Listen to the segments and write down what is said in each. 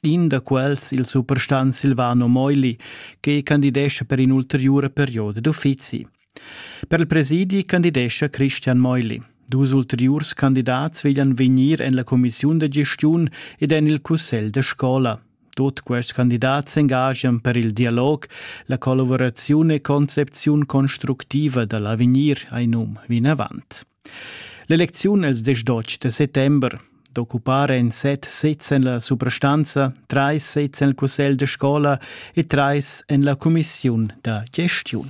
In da quels, il suprastant Silvano Moili, che candidescha per in ulteriura perioda d'uffizi. Per il presidi candidescha Christian Moili. Dus ulteriurs candidats veglian vegnir en la commissiun da gestiun ed en il cussegl da scola. Tut quests candidats s'engagian per il dialog, la collaboraziun e concepziun constructiva da l'avegnir, hai num vinavant. L'elecziun els diesch da settember d'occupar ein set sezs en la suprastanza, treis sezs en il cussegl da scola e treis en la cumissiun da gestiun.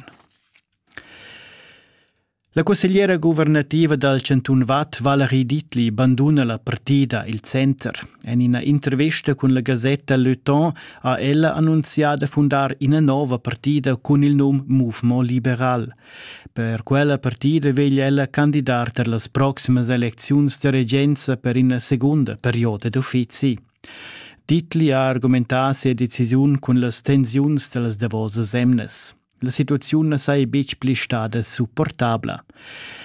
La cussegliera guvernativa dal Chantun Vad, Valerie Dietli, banduna la partida Il Center. En ina intervista cun la gasetta Le Temps ha ella annunzià da fundar ina nova partida cun il num Mouvement liberal. Per quella partida veglia ella candidar per las proximas elecziuns da regenza per ina segunda perioda d'uffizi. Ditli ha argumentà sia decisiun cun las tensiuns da las davosas emnas. La situaziun na saja betg pli stada supportabla.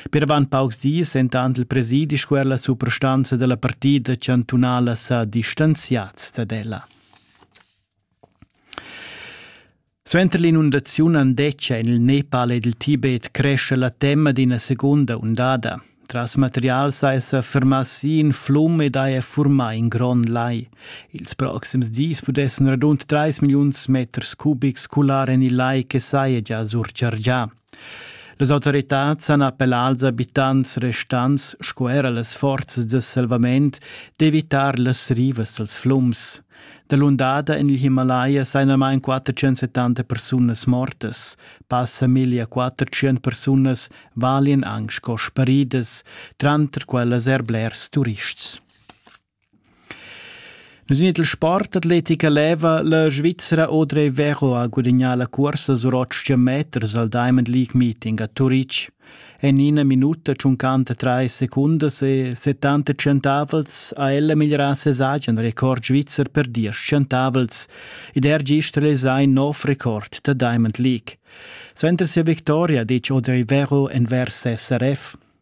Per avant paucs dis entant il presidi squerla suprastanza della partida chantunala sa distanziats dad ella. Suenter l'inundaziun andetgia en il Nepal ed il Tibet crescha la tema d'ina segunda undada. Tras materials ha essa fermà si in flum ed haja furmà in grond lai. Ils proxims dis pudessan radund 3 milliuns meters cubics cular en il lai che saja gia surchargià. Las autoritads han appellà als abitants restants sco era las forzas da salvament d'evitar las rivas dals flums. Dalundada en il Himalaya sajan almain 470 persunas mortas. Passa 1400 persunas valian anc sco sparidas, tranter quellas er blers turists. Nus in il sportatletica leva la Svizra Audrey Vero ha gudagnà la cursa sur 800 meters al Diamond League Meeting a Turitg. En ina minuta tschuncanta trais secundas e 70 centavels ha ella migliorà ses agen record svizzer per diesch centavels ed er gist realisà in nov record da Diamond League. Suenter sia victoria ha ditg Audrey Vero envers SRF.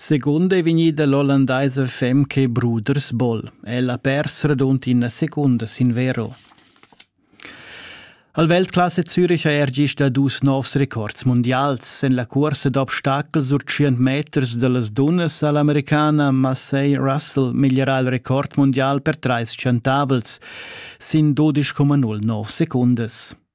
Secund ei vegnida l'ollandaisa fem che Bruders Boll. Ella ha pers radund ina secunda sin vero. Al Weltklasse Zürich ha er gist dà dus novs records mundials. En la cursa d'obstacel sur 100 meters dallas dunnas all'americana Macey Russell migliera il record mundial per trais centavels sin 12,09 secundas.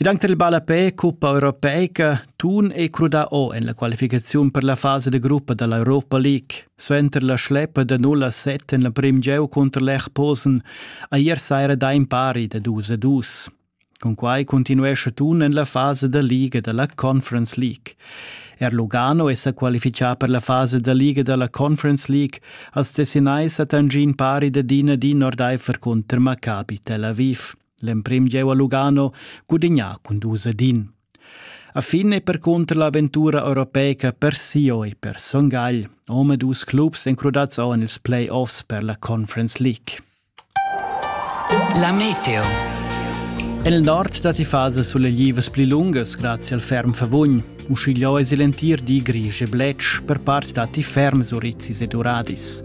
Ed anche il ballapè cuppa europeica tun è crudà o en la qualificaziun per la fasa da gruppa da l'Europa League. Suenter la schleppa da 0 a 7 en la primgieu cunter l'Echposen ha ier saira dà in pari da 2 a 2. Con quai continuescha Thun en la fasa da liga da la Conference League. Er Lugano è sa qualifichà per la fasa da liga da la Conference League als Tessinais a Tangin pari da din a din ordaifer cunter Maccabi Tel Aviv. L'emprim jeu a Lugano gudignà cun dus ed in. A fin è percunter l'avventura europeica per Sio e per Son Gagl, ome dus clubs encrudats en ils play-offs per la Conference League. La meteo. En il nord datti fases suleglivas pli lungas grazie al ferm favugn. Uschigliò è il entir di grisch e bletsch, per part datti ferm surizis ed uradis.